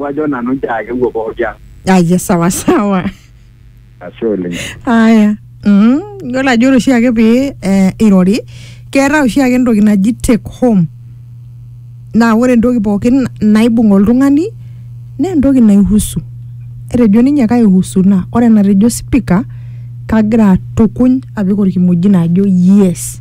wajo nanu njaake wuo pooki ang aya sawa sawa ashe oleng aya mm, yiolo ajo ore oshiake pee eh, irori keetae oshiake entoki naji take home naa ore entoki pookin naibung oltung'ani naa entoki naihusu etejo ninye kaihusu naa ore enatejo spika kagira atukuny apik orkimojino ajo yes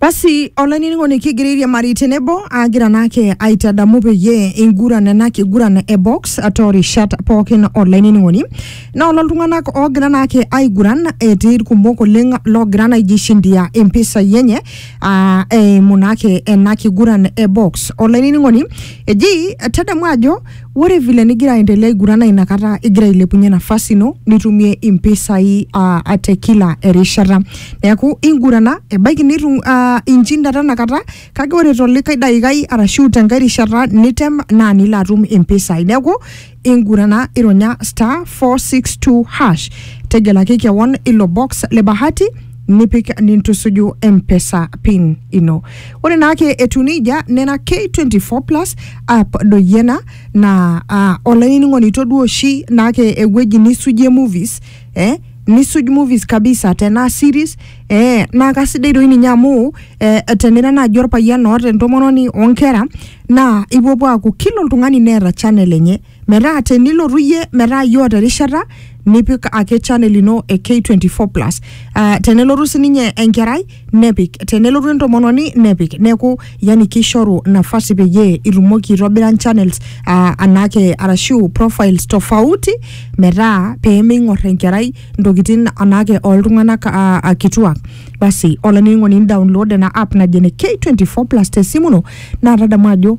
Basi olainining'oni kigiririe mari tenebo agira naake aitadamu peyie inguran ena kiguran e box toorishat pookin olainining'oni naa ololtung'anak oogira naake aiguran etii irkumok oleng loogira naa aijishindia impisai enye aa eimu naake ena kiguran e box. Olainining'oni eji tadamu ajo Ore vile nigira aendelea aigurana inakata igira ailepunye nafasi ino nitumie impisai uh, te kila erishata neeku ingurana ebaiki nitu uh, inchinda tenakata kake ore tolikae daikai arashu tenkae rishata nitem naa nilo atum impisai neeku ingurana ironya star 462 hash tegelaki kewon ilo box le bahati nipik nintusuju mpesa pin ino ore naake etu nejia nena k24 plus app doi ena naa ah, olainining'oni toduo oshi naake ewueji nisujie movies eh, nisuj movies kabisa tenaa series eh, naa kasidai doi ninye amu eh, tenira naaji orpayian oota entomononi onkera naa ipuopuo aaku kila oltung'ani neeta channel enye metaa tenilotu iyie metaa iyie oota erishata nipik ake channel ino e K24 plus uh, tenelotu sininye enkerai nepik tenelotu entomononi nepik neeku yani kishoru nafasi peyie itumoki aitobira channels uh, anake arashu profiles tofauti metaa pemeing'or enkerai ntokitin anake oltung'anak uh, uh, kituak basi olainining'oni download ena app naji ene K24 plus tesimu ino naa tadamu ajo